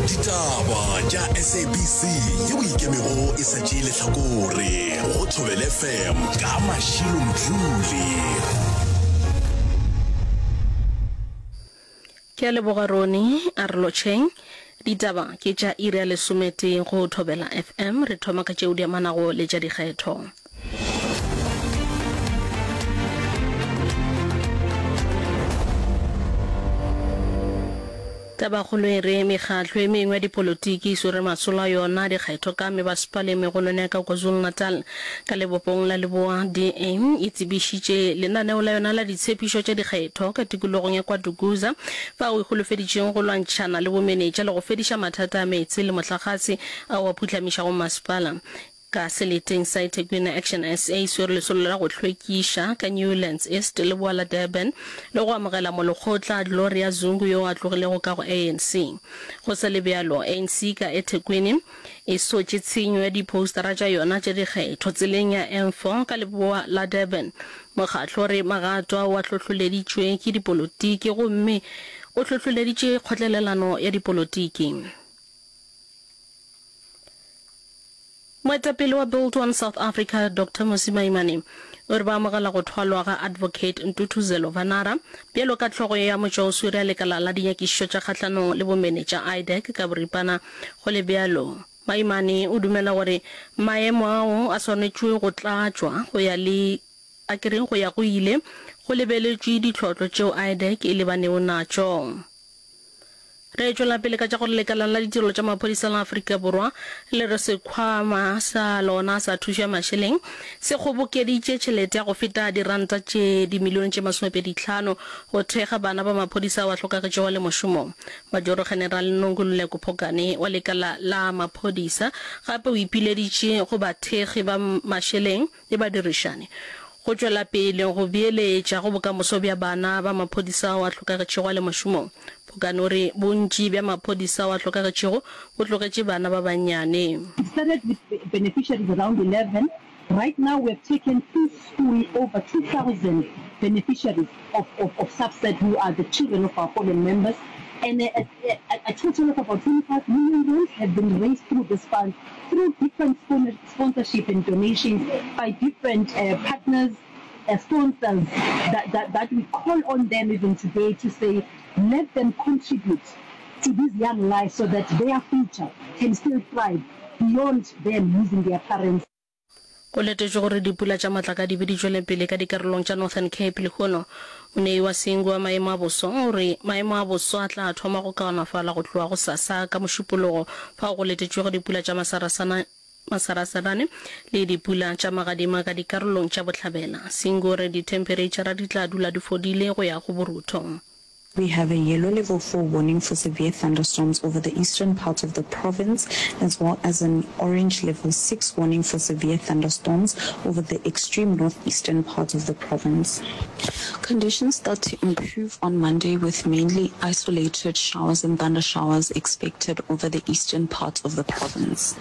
ditaba tša sabc ye o ikemego e sa tšee lehlakore go thobele fm ka mašilo mdluli ke a leboga rone a re lotšheng ditaba ke tša iri ya lesometee go thobela fm re thoma ka tšeo di amanago le tša dikgetho Tabakgolo e re, Mekgatlo e mengwe ya dipolotiki e swere masolo a yona a dikgetho ka mebasepala e megolwane ya ka KwaZulu-Natal. Ka lebopong la leboa, DA e tsebišitše lenaneo la yona la ditshepišo tša dikgetho ka tikologong ya KwaDukuza, fao e holofeditšeng go lwantšhana le bomenetša le go fediša mathata a meetse le mohlagase ao a phuhlamišago masepala. Ka seleteng sa Ethekwini Action SA e swere lesolo la go hlwekiša ka Newlands East, leboa la Durban, le go amogela molekgotla Gloria Zungu yo a tlogilego ka go ANC. Go sa le bjalo, ANC ka Ethekwini e sotše tshenyo ya diphoustara tša yona tša dikgetho tseleng ya N4 ka leboa la Durban. Mokgatlo o re magato ao a hlohloleditšwe ke dipolotiki gomme o hlohloleditše kgotlelelano ya dipolotiki. Moetapele wa Build One South Africa, Doctor Mmusi Maimane, o re ba amogela go thwalwa ga Advocate Ntuthuzelo Vanara bjalo ka hlogo ya motšwaoswere ya lekala la dinyakišišo tša kgahlanong le bomene tša IDEC ka boripana. Go le bjalo, Maimane o dumela gore maemo ao a swanetšwe go tlatšwa go ya le a ke re go ya go ile go lebeletšwe ditlhotlo tšeo IDEC e lebanego natšo. Re tšwela pele ka tša gore lekalana la ditirelo tša maphodisa la Afrika Borwa le re sekhwama sa lona sa thušo ya mašeleng se kgobokeditše tšhelete ya go feta diranta tše dimilione tše masomepedi tlhano go thekga bana ba maphodisa ao a hlokagetšego le mošomong. Majoro-general Nonkululeko Phokane wa lekala la maphodisa gape o ipileditše go bathekgi ba mašeleng le badirišani go tšwela pele go beeletša go bokamoso bja bana ba maphodisa ao a hlokagetšego a le mašomong. Phokan o re, Bontši bja maphodisa ao a hlokagetšego bo tlogetše bana ba bannyane. It started with beneficiaries around 11, right now we have taken to school over 2000 beneficiaries of of of SAFSAT who are the children of our fallen members and a a a total of about 25 million rands have been raised through this fund through different spon sponsorship and donations by different partners, sponsors that we call on them even today to say let them contribute to these young lives so that their future can still thrive beyond them losing their parents. Go letetšwe gore dipula tša matlakadi be di tšwele pele ka dikarolong tša Northern Cape lehono. Monei wa Singu wa maemo a boso o re maemo a boso a tla thoma go kaonafala go tloga gosasa ka Mošupologo fao go letetšwego dipula tša masarasana Masarasarane le dipula tša magadima ka dikarolong tša bohlabela. Singore, Dithempereitšhara di tla dula di fodile go ya go borutho. We have a yellow level four warning for severe thunderstorms over the eastern part of the province as well as an orange level six warning for severe thunderstorms over the extreme northeastern part of the province. Conditions start to improve on Monday with mainly isolated showers and thundershowers expected over the eastern parts of the province.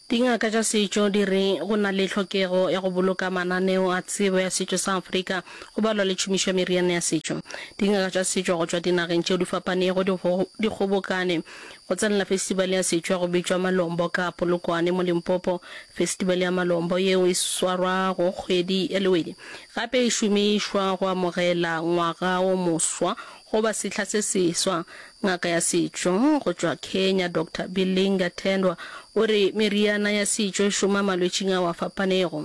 Dingaka tša setšo di re go na le tlhokego ya go boloka mananeo a tsebo ya setšo sa Afrika go balwa le tšhomišo ya meriana ya setšo. Dingaka tša setšo go tšwa dinageng tšeo di fapanego di kgobokane Go tsenela Festival ya Setšwa go bitšwa Malombo ka Polokwane mo Limpopo. Festival ya Malombo yeo e swarwa go kgwedi ya Lewedi. Gape e šomišwa go amogela ngwaga o moswa goba sehla se seswa. Ngaka ya setšo go tšwa Kenya Doctor Bilinga Tendwa o re meriana ya setšo e šoma malwetšing ao a fapanego.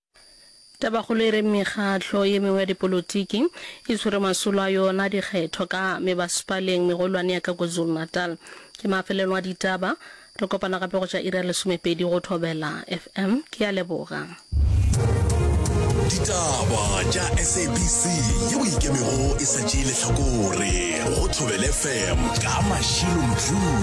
Tabakgolo e re mekgatlo ye mengwe ya dipolotiki e swere masolo a yona a dikgetho ka mebasepaleng megolwane ya ka KwaZulu-Natal. Ke mafelelong a ditaba. Re kopana gape go tša iri ya lesomepedi go Thobela FM. Ke a leboga. Ditaba tša SABC yeo e ikemego e sa tšee lehlakore go Thobela FM ka Mashilo Mdluli.